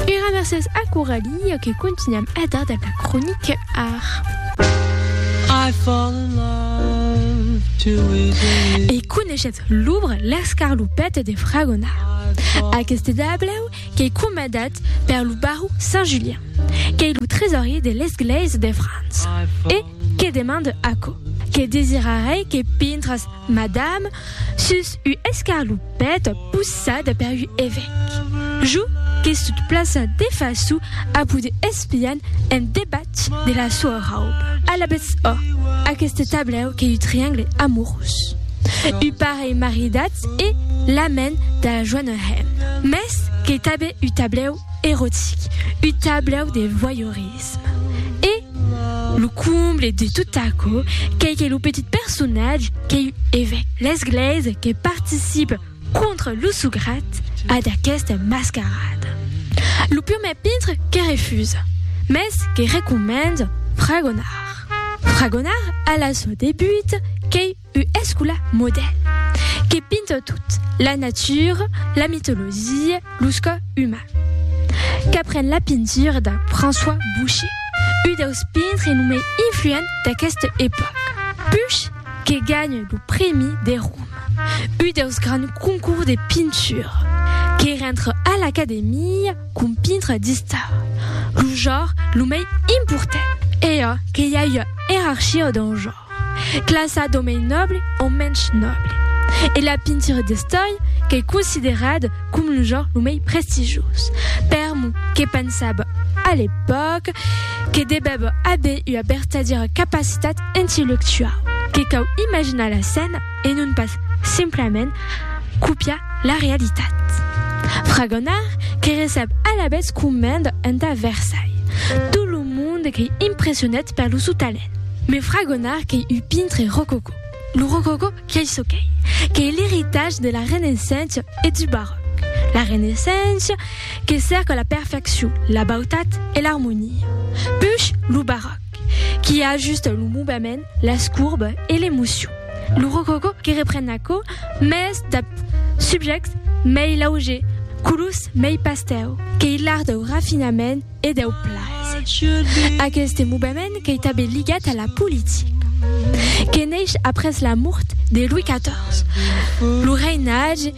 Era mercés a Coralie que continuam a dar de la cronique ar. E coneishetz lubr L'escarlopète de Fragona. Aqueste dablèu qu'ei comandat per lo baró Saint Julien, qu'ei lo tresorier de l'esglèisa de França e que demande aquò, que desirarei que pintras Madame, sus u escarlopèt possat per u evèc. Jo que sut plaça de façu a poder espian en debatz de la soa rauba. Alabetz ò, aqueste tablèu qu'ei u triangle amorós. U parelh maridatz e l'amèn da joana hemna. Mès qu'ei tanben u tablèu erotic, u tablèu de voyeurisme. L'entusiasme e lo comble de tot aquò qu'ei que lo petit personatge qu'ei evèc l'esglèisa que participe contra lo sograt a d'aquesta mascarada. Lo purmèr pintre que refusa, mès que recomença fragonar. Fragonar a la sua debuta qu'ei Ua escòla modèl que pinta tot, la natura, la mitologia, los còrs umans. Qu'apren la pintura de François Boucher, un deus pintres lo mai influent d'aquesta epòca. Pusch que ganha lo prèmi de Roma, un deus grands concours de pintura, que rentra a l'Academia com pintre d'istara, lo genre lo mai important. Ei a que i a ua ierarchia dau genre. Classa d'o mei nòble o mensh nòble. E la pintura d'estòia qu'ei considerada com lo genre lo mei prestigioz. Per mo, que pensava a l'epòca que devèva aver ua vertadiera capacitat intellectuau, que cau imaginar la scèna e non pas simplament copiar la realitat. Fragonard que recep alavetz comenda entà Versailles tot lo monde qu'ei impressionat per lo sou talent. Me fra Gonard qu'ei un pintre rococó. Lo rococó qu'ei çò qu'ei, qu'ei l'eritatge de la Renaissença e du Barròc. La Renaissença que cèrca la perfeccion, la bautat e l'armonia. Push lo Barròc qui ajusta lo movement, las courbes e l'emocion. Lo rococó que repren aquò, mès dab subjèctes mei lauger, colors mei pastèu, qu'ei l'art dau rafinament, e deu plaser. Aqueste movement qu'ei tanben ligat a la politica, que neish après la mort de Louis XIV, lo reinatge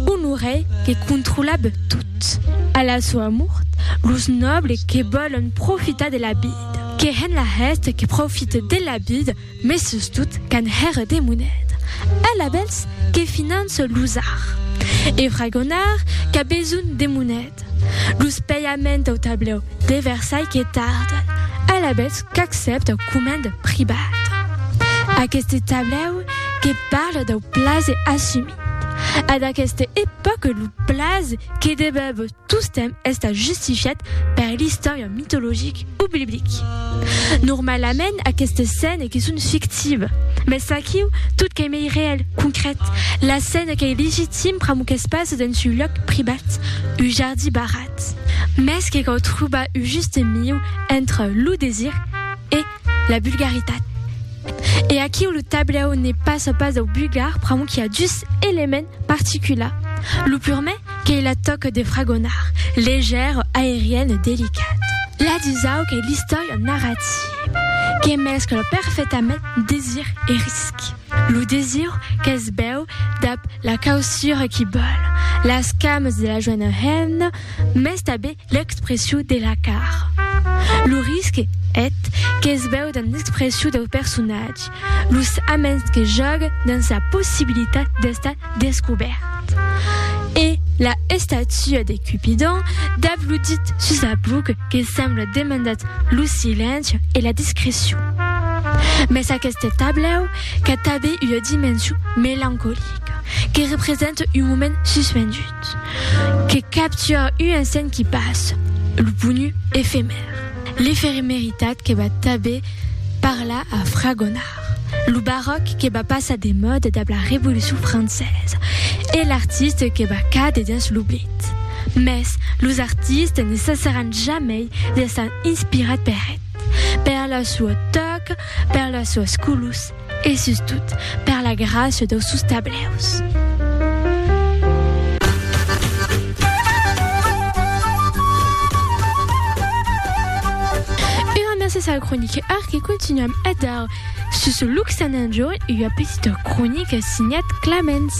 Honoré que controlab tot. A la soa mort, los nòbles que vòlon profitar de la vida, que hèn la hèste que profite de la vida, Mes sustot qu'an hèr de moneda. Ela bèls que finance los ar. E Fragonard qu'a besonh de moneda. Los pèiaments au tablèu de Versailh que tarden. Ela bèls qu'accèpta comenda pribada. Aqueste tablèu que parla dau plaser assumit. A d'aqueste epòca lo plaser que debèbo Tostemp estat justifiat per l'istòria mitologic o biblic. Normalament aquestes scènes que son fictives, mes aquiu tot qu'ei mei reèl, concret, la scène qu'ei legitim pr'amor qu'es pas dens un lòc privat, un jardí barrat. Mes que cau trobar un juste mieu entre lo desir e la vulgaritat. E aquiu lo tablèu ne passa pas dau vulgar pr'amor qu'i a dus elements particulars, lo purmè Qu'ei la tòca de fragonar, legèr, aerian e delicat. La dusau qu'ei l'istòria narrativa que mescla perfetament desir e risc. Lo desir qu'es bèu dab la causura qui bòl las cames de la joena hemna mès tabé l'expressiu de la cara. Lo risc, eth, qu'es bèu damb l'expressiu dau personatge los aments que jòguen dins la possibilitat d'estar descobèrt. E la estatua de Cupidon d'abludit sus la bluc que sembla demandat lo silenci e la discrecion. Mes aqueste tablèu qu'a tanben ua dimension melancolica, que representa un moment suspendut. Que capture un insent qui passe, lo ponu efemèr. L'efemeritat que va tanben parlar a Fragonard, lo baròc que va passar de mòda dab la Revolucion Francesa e l'artiste que va càder dens l'oblit. Mès los artistes ne cessaràn jamei d'estar inspirats per eth, per la sua tòca, per las suas colors, E sustot, per la gràcia dau sus tablèus. Gràcias al croniquèr que continuam a dar sus Luxananjo ua petita cronica signat Clamens.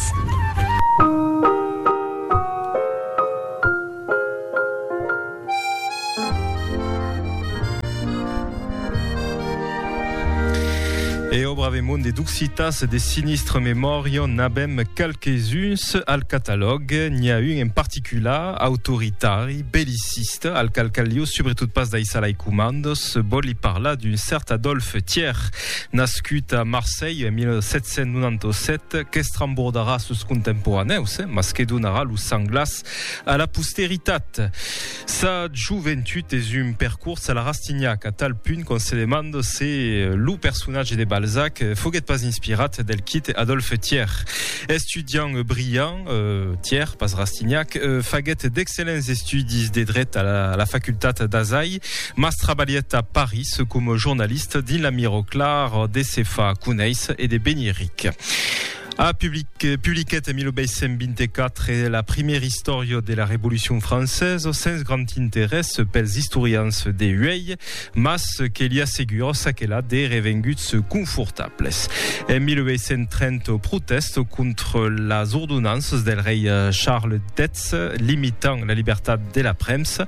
E obra ve monde d'occitas de sinistre memòria n'abem qualques uns al catalòg n'i a un en particular autoritari belliciste al cal caliu sobretot pas daissar lai comandos vol li parlar d'un cert Adolphe Thier nascut a Marseille en 1797 qu'estrembordarà sus contemporanèus mas que donarà lo sang glas A la posteritat. Sa joventut es un percors a la Rastignac, a tal punt qu'on se demanda se lo personatge de Balzac foguèt pas inspirat del quite Adolphe Thiers. Estudiant brillant, Thiers, pas Rastignac, faguèt d'excellents estudis de dret a la facultat d'Azai, mas trabalhèt a Paris coma jornalista dins la Mirror Clar de se far conéisser e de venir ric. A publiquèt en 1824 la primièra istòria de la Revolucion Francesa, sens grand interès pels istorians de uèi, mas que li assegura ça que la de revenguts confortables. En 1830 au protèst contra las ordonanças del rei Charles X limitant la libertat de la premsa,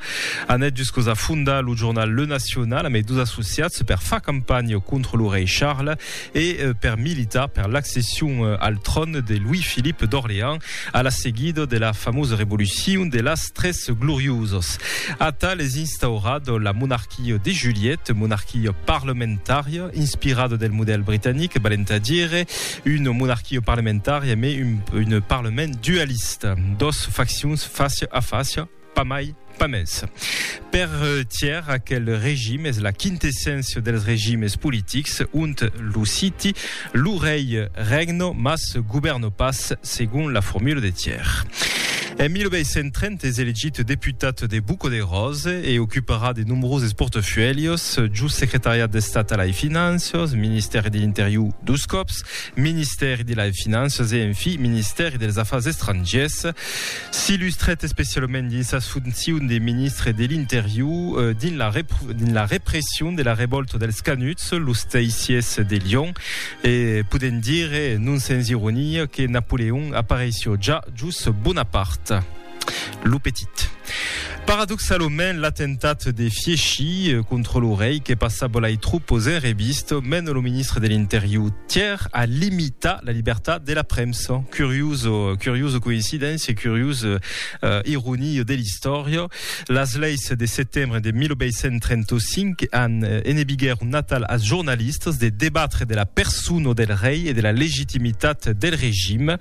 anèt juscaus a fondar lo jornal Le National amei dos associats per far campanha contra lo rei Charles, e per militar per l'accession al tròn de Louis-Philippe d'Orléans a la seguida de la famosa revolucion de las tres gloriosas. Atal es instaurat la monarquia de Juliette, monarquia parlamentària inspirada del modèl britanic, valent a dire una monarquia parlamentària, mai un parlament dualista, dos faccions fàcia a fàcia, Pas mai, pas mès. Per Thiers, aquel regime es la quintesséncia dels regimes politics, ont lo citi, lo rei regno, mas govèrno pas, segon la formula de Thiers. En 1830 es elegit deputat de Buco de Rose e ocuparà de nombroses portafuèlhos, jos secretariat d'Estat a lai Finanças, ministèri de l'Interior dos còps, ministèri de lai Finanças e, en fi, ministèri dels Afars Estrangiers. S'illustrèt especialament dins sas foncions de ministre de l'Interior dins la dins la repression de la revòlta dels Canuts, los Teissiers de Lion, e podèm dire, non sens ironia, que Napoleon apareissió ja jos Bonaparte, lo petit. Paradoxalament, l'atemptat de Fieschi contra lo rei que passa bolai tropos en revista, mena lo ministre de l'Interior Thiers a limitar la libertat de la premsa. Curioso, curioso coincidéncia, curiosa uh, ironia de l'istòria. Las leis de setembre de 1835 an eh, enebiguèr un natal als jornalistas de debatre de la persona del rei e de la legitimitat del regime.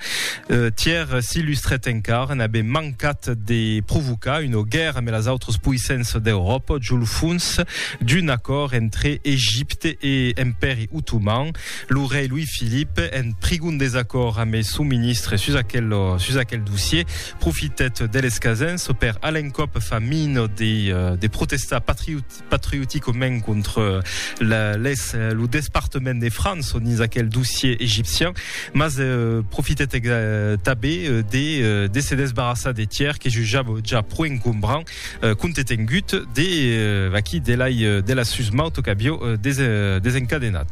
Uh, Thiers s'illustrèt encara, n'avè mancat Cat de provocar una guèrra amb las autras poissenças d'Euròpa jo lo fons d'un acòrd entre Egipte e Empèri Otoman. Lo rei Louis-Philippe, en prigon desacòrd amb son ministre sus aquel, sus aquel dossier, profitèt de l'escasença per a l'encòp far mina de, de protestar patriot, patrioticament contra la, les, lo despartament de França dins aquel dossier egipcian, mas euh, profitèt ex- euh, tabé euh, de, euh, de se desbarrassar de tièr que jujava ja pro encombrant, euh, compte tengut de, euh, aquí, de l'ai, euh, de la susmauta qu'avió euh, des, euh, desencadenat.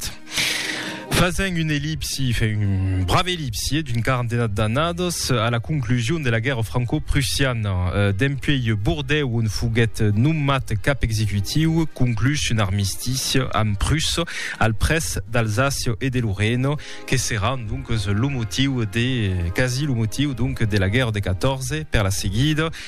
Fasent un ellipsi, fe un brave ellipsi d'un quarantena d'annadas a la conclusion de la guèrra franco-prussiana, dempuèi Bordèu on foguèt nomat cap executiu, conclús un armistici amb Prussa al près d'Alsàcia e de Lorena, que serà donc lo motiu de, quasi lo motiu donc, de la guèrra de 14 per la seguida.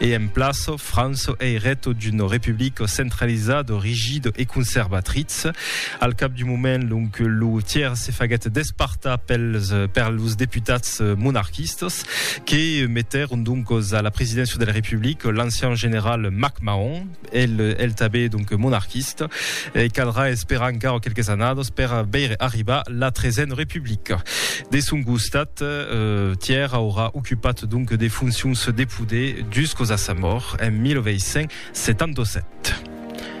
E en plaço, Franço ei reto d'uno republico centralizado, rigido e conservatritz. Al cap d'un moment, l'oncle Loutier se faguèt despartar pels per los deputats monarquistas, que metèron doncos a la presidéncia del republic l'ancian general MacMahon, El el tabé donc monarquista e caldrà esperar encara quelques annados per veire arribar la tresen republica. De son costat, Tièr aurà ocupat donc de foncions de poder juscos a sa mòrt en 1877.